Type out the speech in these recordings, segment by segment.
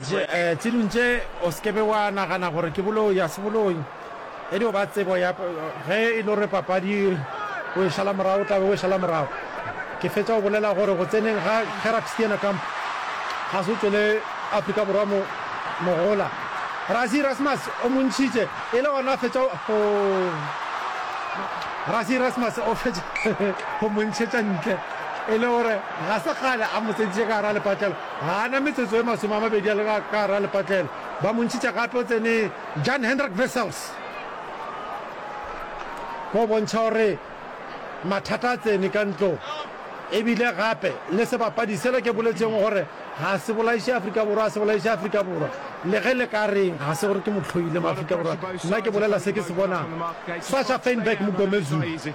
Tše, ee, tše dintši. O se ke be wa nagana gore ke boloi, ga se boloi. E dio ba tsebo ya, ge e le gore papadi o e šala morago, o tla be o e šala morago. Ke fetša go bolela gore go tseneng ga Gerrard Steenekamp ga se go tšwele Afrika Borwa mo, mogola. Rassie Erasmus o mo ntšhitše, e le gona a fetša go, hoo, Rassie Erasmus o fetša go mo ntšhetša ntle, e le gore ga se kgale a mo tsentšitše ka gare ga lepatlelo. Ga a na metsotso e masome a mabedi a le ka gare a lepatlelo, ba mo ntšhitša gape o tsene Jan-Hendrik Wessels go bontšha gore mathata a tsene ka ntlong. E bile gape le sebapadi sela ke boletšego gore ga se bolaiše Afrika Borwa, ga se bolaiše Afrika Borwa, le ge le ka reng. Ga se gore ke mo hloile mo Afrika Borwa, nna ke bolela se ke se bonang. Sasha Feinberg, Mogomezulu.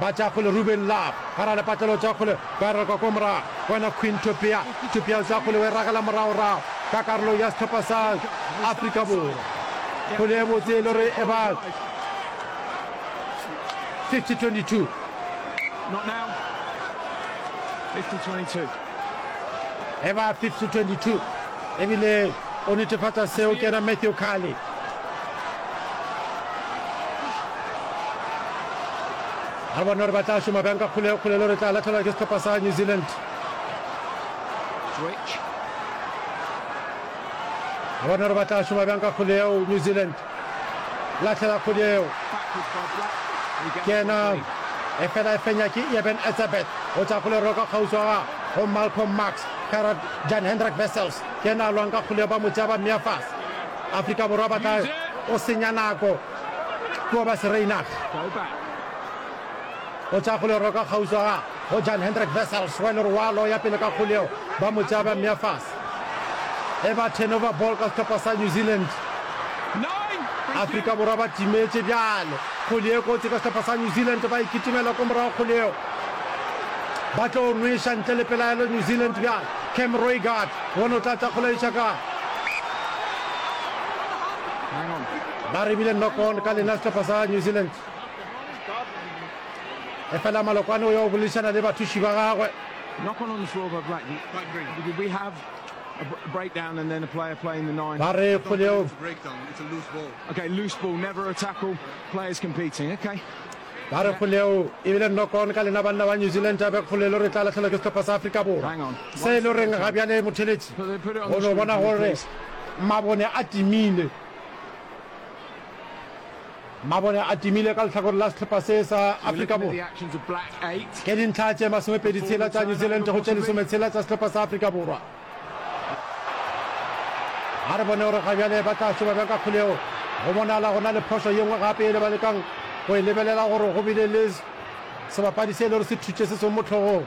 ba tša kgole Ruben Love gara lepatlelo tša kgole ba rakwa kwa morago wena Queen Topia Topia tša kgole we ragela morago-rago ka karolo ya sehlopha sa Afrika Borwa kgole e botse e le gore e ba 50-22 Not now. 50-22. e ba 5 to 22 ebile o netefatsa seo ke ena matthew carly ga bona gore ba tla šoma bjang ka kgolekgolelo re tla latlhelwa ke setlhopha sa new zealand ga bona gore ba tla šoma bjang ka kgoleo new zealand Lahlela kgodi eo. Ke yena. Efela e fenya ke Eben Etzebeth. O tla go le roka kgauswa ga go Malcolm Marx. Kara Jan Hendrik Wessels. Ke yena a lwang ka kgoleo ba motšea ba meafas. Afrika Borwa ba tla o senya nako. Kua ba Sereinach. O tšea kgole roka kgauswa ga go Jan Hendrik Wessels, wa lerwalo ya pele ka kgole eo ba mo tšea ba mmea fase. E ba turnover ball ka sehlopha sa New Zealand. Afrika Borwa ba timetše bjale. Kgole e kotsi ka sehlopha sa New Zealand, ba e kitimela ko morago kgole eo. Ba tlo nweša ntle le pelaelo New Zealand bjale. Cam Roigard, bona o tla tla kgole eša kae. Ba rebile knock on ka lena sehlopha sa New Zealand. efela malokwane o ya go boledišana le bathuši ba gagwe ba re kgoleo ba re kgoleo ebile nnokon ka lena banna ba new zealand a be kgolelo re tla latlhelwa ke setlhopha sa aforika borwa se e le goreng ga bjale motheletši o no bona gore mabone a timile Mabone a timile ka lehlakore la sehlopa se sa Afrika Borwa ke dintlha tše masomepedi tshela tša New Zealand go tše lesome tshela tša sehlopa sa Afrika Borwa. A re bone gore ga bjale ba tla šoba bjang ka kgoleo. Go bonala go na le phošo ye nngwe gape ele ba lekang go e lebelela gore go bile le sebapadi se e le gore se thutše se sengwe mo tlhogong.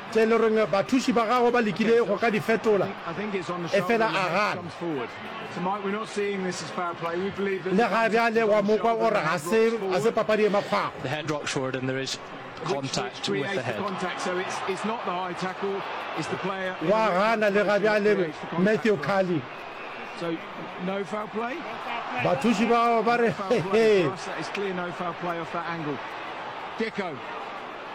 tše e le gore bathuši ba gagwe ba lekile go ka di fetola, efela a gana. Le ga bjale wa mo kwa o re ga se ga se papadi e makgwakgwa. Wa gana le ga bjale Matthew Carley. Bathuši ba gagwe ba re, He, he.